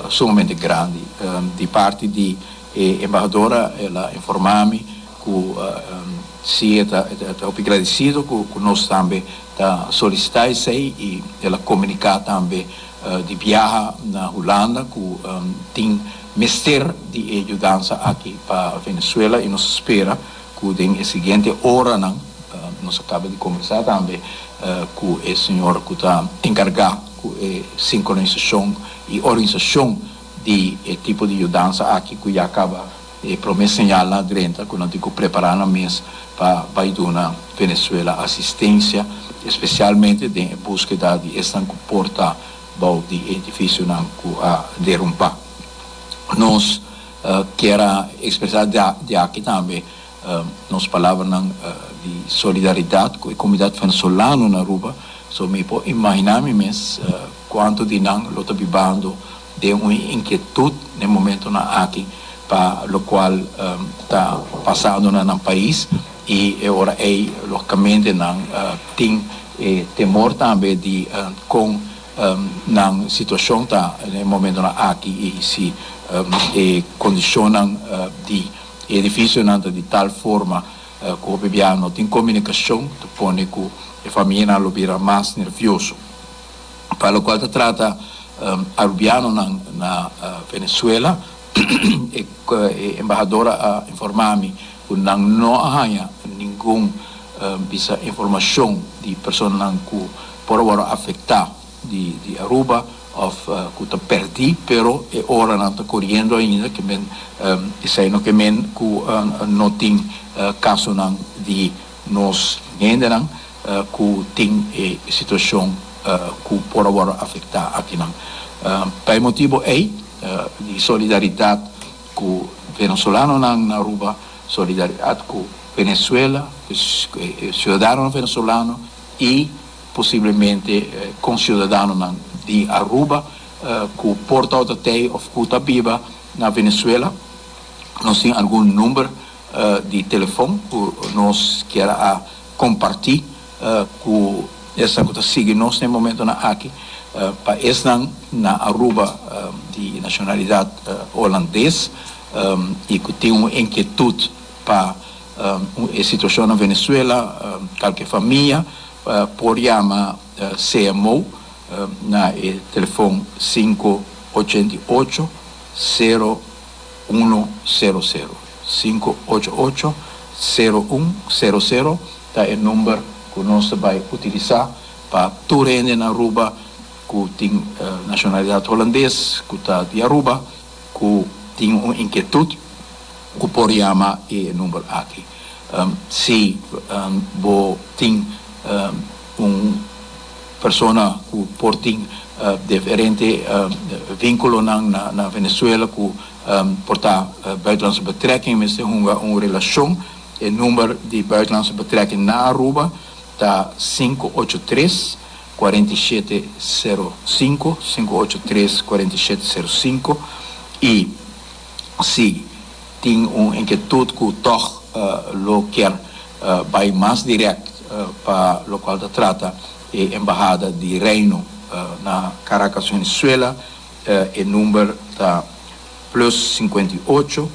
sumamente grandi. Di parti di e embahadora el a informa mi cu si e ta hopi gradicido cu nos tambe ta solicita esey y el a comunica tambe di biaha na Hulanda cu tin mester di e yudansa aki pa Venezuela y nos spera cu den e siguiente oranan, nos a caba di conversa tambe cu e señor cu ta encarga. cu e sincronisacion y organisacion di e tipo di yudansa aki cu ya caba e prome señalnan drenta cu nan tin cu prepara nan mes pa bay duna Venezuela asistencia, especialmente den e buskeda di esnan cu por ta bou di e edificionan cu a derumpa. Nos kier a expresa di aki tambe Nos palabranan di solidaridad cu e comunidad venezolano na Aruba, so mi por imagina mi mes cuanto di nan lo ta bibando den un inquietud na e momentonan aki pa locual ta pasando na nan pais y e ora ey logicamente nan tin e temor tambe di con nan situacion ta na e momentonan aki y si e condicionnan di E edificionan ta di tal forma cu hopi biaha no tin comunicacion, ta pone cu e famianan lo bira mas nervioso. Pa locual ta trata Arubianonan na Venezuela, e embahador a informa mi cu nan no a haña ningun bisa informacion di personanan cu por a wor afecta. di Aruba of cu ta perdi pero e ora nan ta coriendo ainda que men esai no ke men cu no tin casonan di nos hendenan cu tin e situacion cu por a wordo afecta akinan pa e motibo ey di solidaridad cu Venezolanonan na Aruba solidaridad cu Venezuela cu e ciudadanonan Venezolano y Posiblemente kon siudadanonan di Aruba ku por ta ota tei òf ku ta biba na Venezuela nos tin algun number di telefòn ku nos kier a kompartí ku esnan ku ta sigui nos na e momentunan aki. Pa esnan na Aruba di nashonalidat Holandes i ku tin un enkietut. Pa e situacion na Venezuela calke famia por yama CMO na e telefon sinku ochenta i ocho, sero uno sero sero. Sinku ocho ocho, sero un sero sero ta e number cu nos ta bay utilisa pa tur hende na Aruba cu tin nacionalidad Holandes cu ta di Aruba. cu tin un inkietud cu por yama e number aki si bo tin un persona cu por tin diferente vinculonan na Venezuela cu por ta buitenlandse betrekking mester hunga un relacion e number di buitenlandse betrekking na Aruba ta sinku ocho tres. kuarenta i shete, seru sinku, sinku ocho tres, kuarenta i shete, seru sinku, i si tin un inketut ku tòg lo ker bai mas dirèkt pa lokual ta trata e Embahada di Reino na Karakas, Venezuela, e number ta plus sinkuenta i ocho,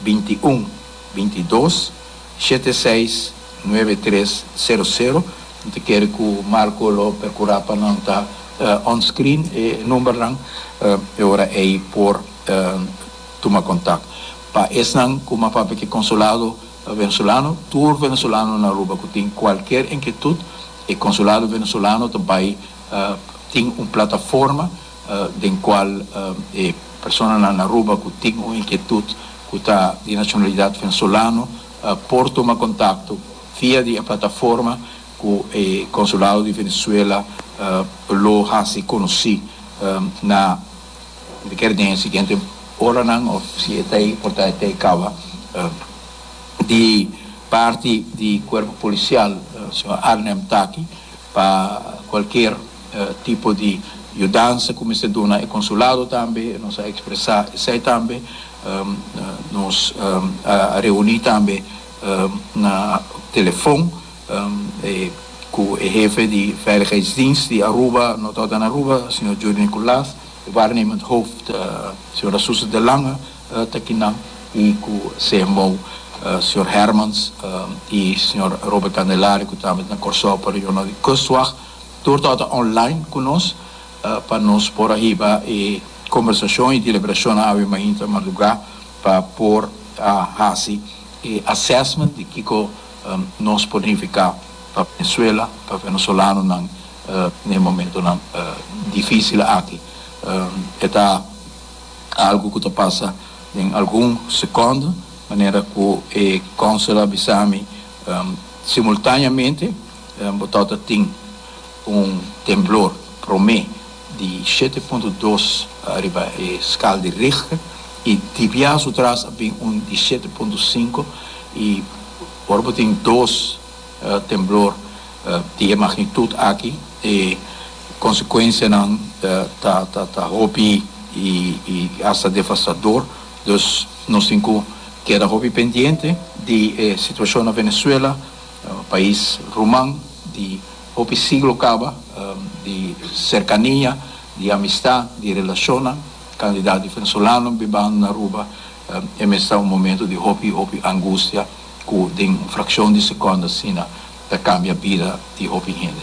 binti un, binti dos. Shete seis, nuebe tres, sero sero, mi ta kere ku Marco lo perkurá pa nan ta onscreen e numbernan, e ora ei por tuma kontak. Pa esnan ku m'a papia ke konsulado venezolano, tur venezolano na Aruba ku tin kualker inkietut, e konsulado venezolano ta bai tin un plataforma, den cual e personanan Aruba cu tin un inquietud cu ta di nacionalidad venezolano por tuma contacto via di e plataforma cu e Consulado di Venezuela lo haci conoci na mi ker den e siguiente oranan of si e ta ey por ta e ta ey caba di parti di cuerpo policial señor Arnhem ta aki pa cualkier. tipo di yudansa ku mester duna e konsulado tambe nos a ekspresá esei tambe nos a reuní tambe na telefon ku e hefe di veiligheidsdienst di Aruba Noord-Holland Aruba señor Juri Nicolaas e waarnemend hooft señora Suze de Lange ta kinan i ku cmo señor Hermans i señor Robert Candelaria ku tambe ta na Kòrsou pa reunion di kustwacht. Tur tabata online cu nos pa nos por a hiba e conversacion y deliberacionnan awe mainta madruga pa por a haci e assessment di kico nos por nifica pa Venezuela, pa venezolanonan n'e momentonan dificil aki. E ta algo cu ta pasa den algun secondo manera cu e Consul a bisa mi simultaneamente. Bo ta ta tin un temblor prome di shete punto dos riba e skal di Richter i di bia su tras a bin un di shete punto sinku i ora bo tin dos temblor di e magnitud aki e konsekuensianan ta ta ta hopi i i hasta devastador dus nos tin ku keda hopi pendiente di e situashon na Venezuela. Pais ruman di hopi siglo kaba di serkania, di amistá, di relashonnan. Kandidat di venezolano bibando na Aruba e mester un momentu di hopi hopi angustia ku den un frakshon di sekònd asina ta kambia bida di hopi hende.